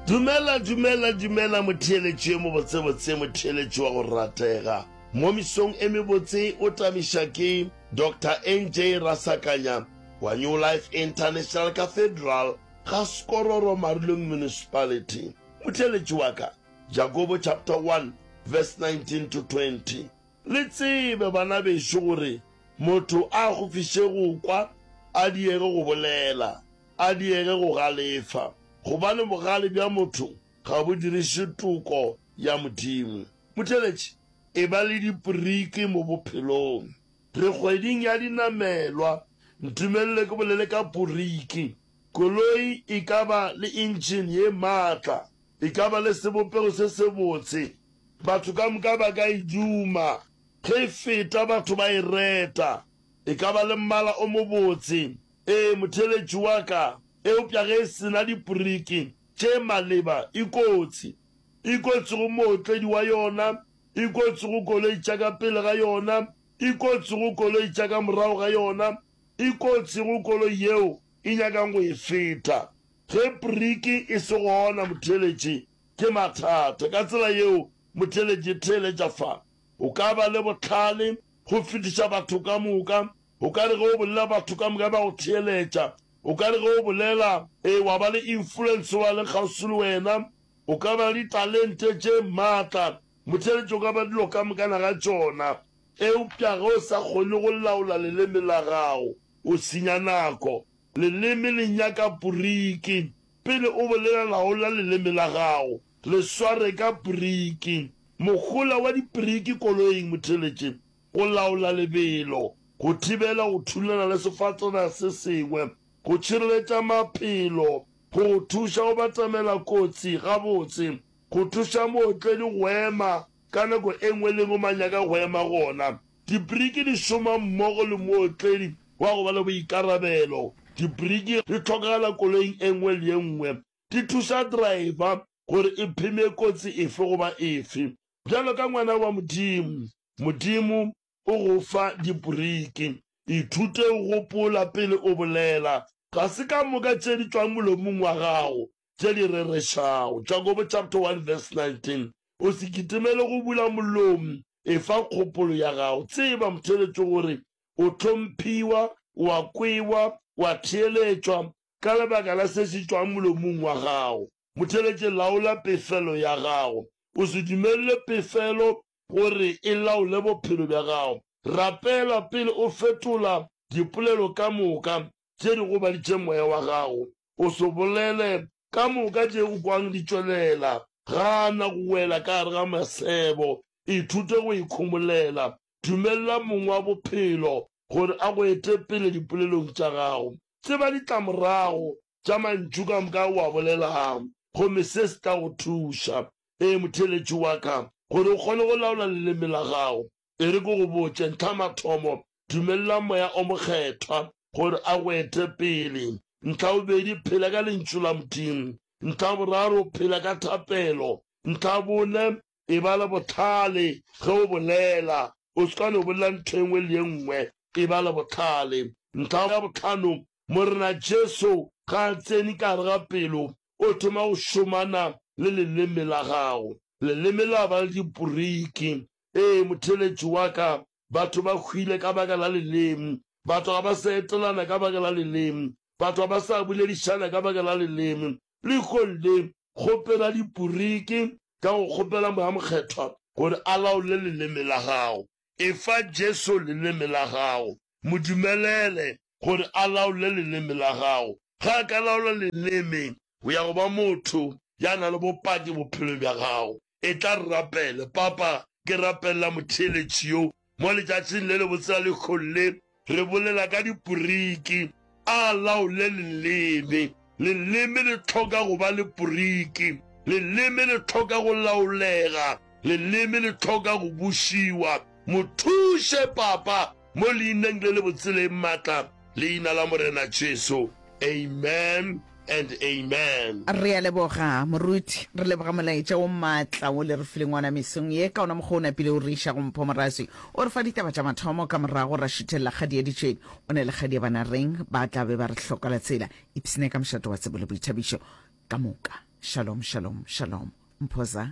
Dumela, dumela, dumela, motheeletši yo mobotsebotse, motheeletši wa go ratega. Mo misong e mebotse o tamiša ke Doctor NJ Rasakanya wa New Life International Cathedral ga Skororo Marulong Municipality. Motheeletši wa ka, Jakobo chapter 1 verse 19 to 20. Le tsebe, bana bešo, gore motho a gofiše go kwa, a diege go bolela. a diege go galefa, gobane bogale bja motho ga bo diriše toko ya Modimo. Motheletši, Eba le dipriki mo bophelong. Re kgweding ya dinamelwa. Ntumelele ke bolele ka priki. Koloi e ka ba le engine ye matla, e ka ba le sebopego se sebotse, batho ka moka ba ka e duma ge e feta, batho ba e reta, e ka ba le mmala o mobotse, Ee, motheeletši wa ka, eupša ge e se na dipriki tše maleba, e kotsi. E kotsi go mootledi wa yona, e kotsi go koloi tša ka pele ga yona, e kotsi go koloi tša ka morago ga yona, e kotsi go koloi yeo e nyakang go e feta. Ge priki e se gona, motheeletši ke mathata. Ka tsela yeo motheeletši theeletša fa o ka ba le bohlale go fetiša batho ka moka. O ka re ge o bolela batho ka moka ba go theeletša. O ka re ge o bolela, ee, wa ba le influence wa leng kgauswi le wena. O ka ba le ditalente tše maatla. Motheeletši o ka ba dilo ka mokana ga tšona. Eupša ge o sa kgone go laola leleme la gago, o senya nako. Leleme le nyaka poriki. Pele o bolela laola leleme la gago. Le sware ka poriki. Mohola wa dipiriki koloing, motheeletši. Go laola lebelo, go thibela go thulana le sefatana se sengwe, go tšhireletša maphelo, go go thuša go batamela kotsi gabotse, go thuša mootledi go ema ka nako e nngwe le e nngwe mo a nyaka go ema gona. Dibriki di šoma mmogo le mootledi wa go ba le boikarabelo. Dibriki di hlokagala koloing e nngwe le e nngwe. di thuša driver gore e pheme kotsi efe goba efe. Bjalo ka ngwana wa Modimo, Modimo o go fa diboriki. Ithute go gopola pele o bolela, ga se ka moka tše di tšwang molomong wa gago tše di rerešago. Jakobo chapter 1 verse 19, O se kitimele go bula molomo, efa kgopolo ya gago. Tseba motheeletšo gore o hlomphiwa, o a kwewa, o a theeletšwa, Ka lebaka la se se tšwang molomong wa gago, motheletše, laola pefelo ya gago. O se dumelele pefelo gore e laole bophelo bja gago. Rapela pele o fetola dipolelo ka moka tše di gobaditše moya wa gago. O se bolele ka moka tše o kwang di tšwelela. Gana go wela ka gare ga masebo. Ithute go ikhomolela. Dumelela Mong wa Bophelo gore a go ete pele dipolelong tša gago. Tseba ditlamorago tša mantšu ka moka ao o a bolelago, gomme se se tla go thuša, ee, motheeletši wa ka, gore o kgone go laola leleme la gago. E re ke go botše, ntlhamathomo, dumelela Moya o Mokgethwa gore a go ete pele. Ntlhabobedi, phela ka Lentšu la Modimo. Ntlhaboraro, phela ka thapelo. Ntlhabone, E ba le bohlale ge o bolela. O se ka no bolela ntho e nngwe le e nngwe. E ba le bohlale. Ntlha ya bohlano, Morena Jesu ga a tsene ka gare ga pelo, o thoma go šomana le leleme la gago. Leleme la ba le diporiki. Ee, motheeletši wa ka Batho ba hwile ka baka la leleme. Batho ga ba sa etelana ka baka la leleme. Batho ga ba sa boledišana ka baka la leleme. Lehong le, kgopela diporiki ka go kgopela Moya Mokgethwa gore a laole leleme la gago. Efa Jesu leleme la gago. Mo dumelele gore a laole leleme la gago. Ge a ka laola leleme, O ya go ba motho ya na le bopaki bophelo bja gago. Etla re rapele. Papa, ke rapelela motheeletši yo mo letšatšing le lebotse la lekgong le. Re bolela ka diporiki. A laole leleme. Leleme le hloka go ba le poriki. Leleme le hloka go laolega. Leleme le hloka go bušiwa. Mo thuše, Papa. Mo leineng le le botseleng matla, leina la Morena Jesu. Amen and amen. Re a leboga, Moruti. Re leboga molaetša wo matla wo le re fileng wona mesong ye, ka wona mokgwa o napile o re iša go Mpho Moraswi. O re fa ditaba tša mathomo, ka morago ra šuthelela kgadi ya ditšweni. O ne le kgadi ya Banareng, ba tla be ba re hloka la tsela. Ipsne ka mošate wa tsebo le boithabišo ka moka. Shalom, shalom, shalom. Mpho za.